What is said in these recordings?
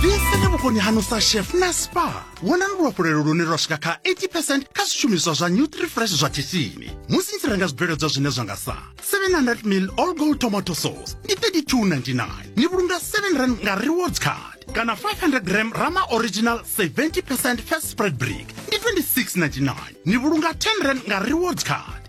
lisani vhukoni hanu sa chef na spa wonani luhafhulelo lune lwa swika kha 80 kha zwishumiswa zwa nutrifresh zwa tshitsini musi ni tshi renga zwibveledzwa zwine zwa nga sa 700 mil all gold tomato sauce ndi 3299 ni vhulunga 7 rand nga rewards card kana 500 gram rama original 70 first spread brick ndi 2699 ni vhulunga 10 rand nga rewards card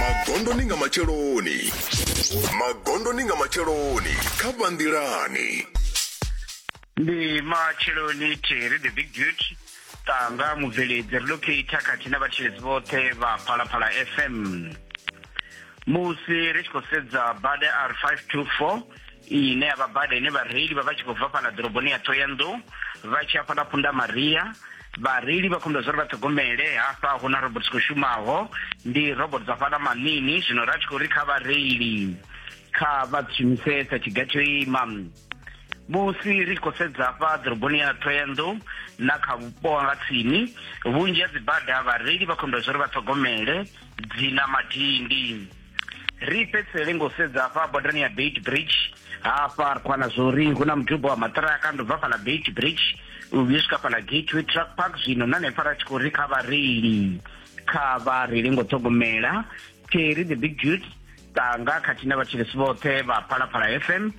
magondoni nga matsheloni magondoni nga matsheloni kha vhanḓilani ndi matsheloni theri the big duty tanga mubveledzi relocata khathihi na vhatshiledzi vhoṱhe vha phalaphala fm musi ri tshi khou sedza bada r 524 iyi ine ya vha bada ine vhareili vha vha tshi khou bva fhaḽa ḓoroboni ya thoyandou vha tshi hafhaḽa phunda maria vhareili vha khombo zwa uri vha ṱhogomele hafha hu na robot khou shumaho ndi robot dza fhaḽa maṋini zwino ra tshi khou ri kha vhareili kha vha shumisesa tshiga tsho ima musi ri tshi khou sedza hafha ḓoroboni ya thoyandou na kha vhupo nga tsini vhunzhi ha dzibada vhareili vha khombo zwa uri vha ṱhogomele dzi na madindi ri fhedzisele ngo sedza hafha bodani ya beit bridge hafha ri khwana zwo ri hu na muduba wa maṱiraka ndo bva fhala beit bridge u vhuye swika fhala gateway truck park zwino na nepfa ra tshi khou ri kha vhareili kha vhareili ngo ṱhogomela theri the big dude tanga khathihi na vhatshilisi vhoṱhe vha phalaphala fm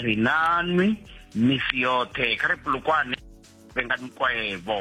ri nanwi misi yoṱhe kha ri pulukwane venga mikwevho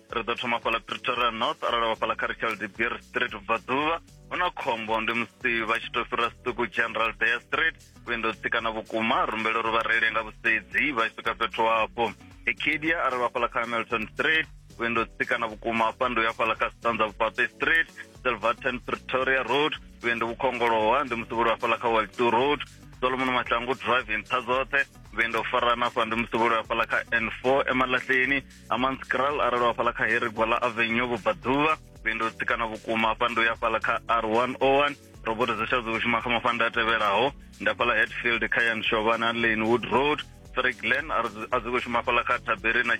ri ḓo thoma fhala pretoria north arali vha fhala kha richard de beer street vhubvaḓuvha hu na khombo ndi musi vha tshi tou fhira siṱuku general dea street vhuendo tsikana vhukuma rumbele uri vha reile nga vhusedzi vha tshi swika fhethu hafho ekedia arali vha fhala kha hamilton street vhuendo tsikana vhukuma hafha ndi uya fhala kha stanza vhufhaṱe street silverton pretoria road vhuendo vhukhongolowa ndi musi vhuli hafhala kha waltu road solomon mahlangu drive nṱha dzoṱhe vhuendo farana hafha ndi musi vhuli hafhala kha n four emalahleni amans kral arali wa fhala kha harry gwala avenue vhubvaḓuvha vhendo tsikana vhukuma hafha ndo ya fhala kha r101 roboto dza tshadzo shuma kha mafanda a tevhelaho nda fhala hetfield kha yan shovana lanewood road three glen a dzi khou shuma fhala kha taberi na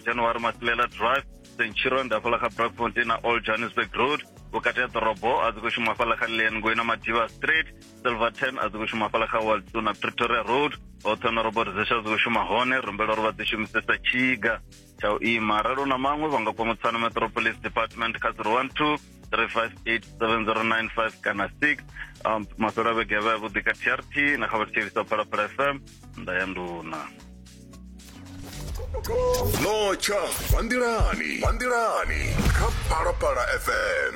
january masilela drive centuron nda fhala kha brakfontein na old johannesburg road vhukati ha ḓorobo a dzi khou shuma fhala kha lane ngoi na madiva street silverton a dzi khou shuma fhala kha waldo na pretoria road hoṱhe na robot zesha dzi khou shuma hone rumbela uri vha dzi shumisesa tshiga tsha u ima arali u na maṅwe vha nga kwa mutsana metropolis department kha 012 3587095 kana 6 um, maswela vhege vha yavhuḓi kha trt na kha vhathetshelisa phalaphala fm nda ya nduna notsha vhandilani vhandilani kha phalaphala fm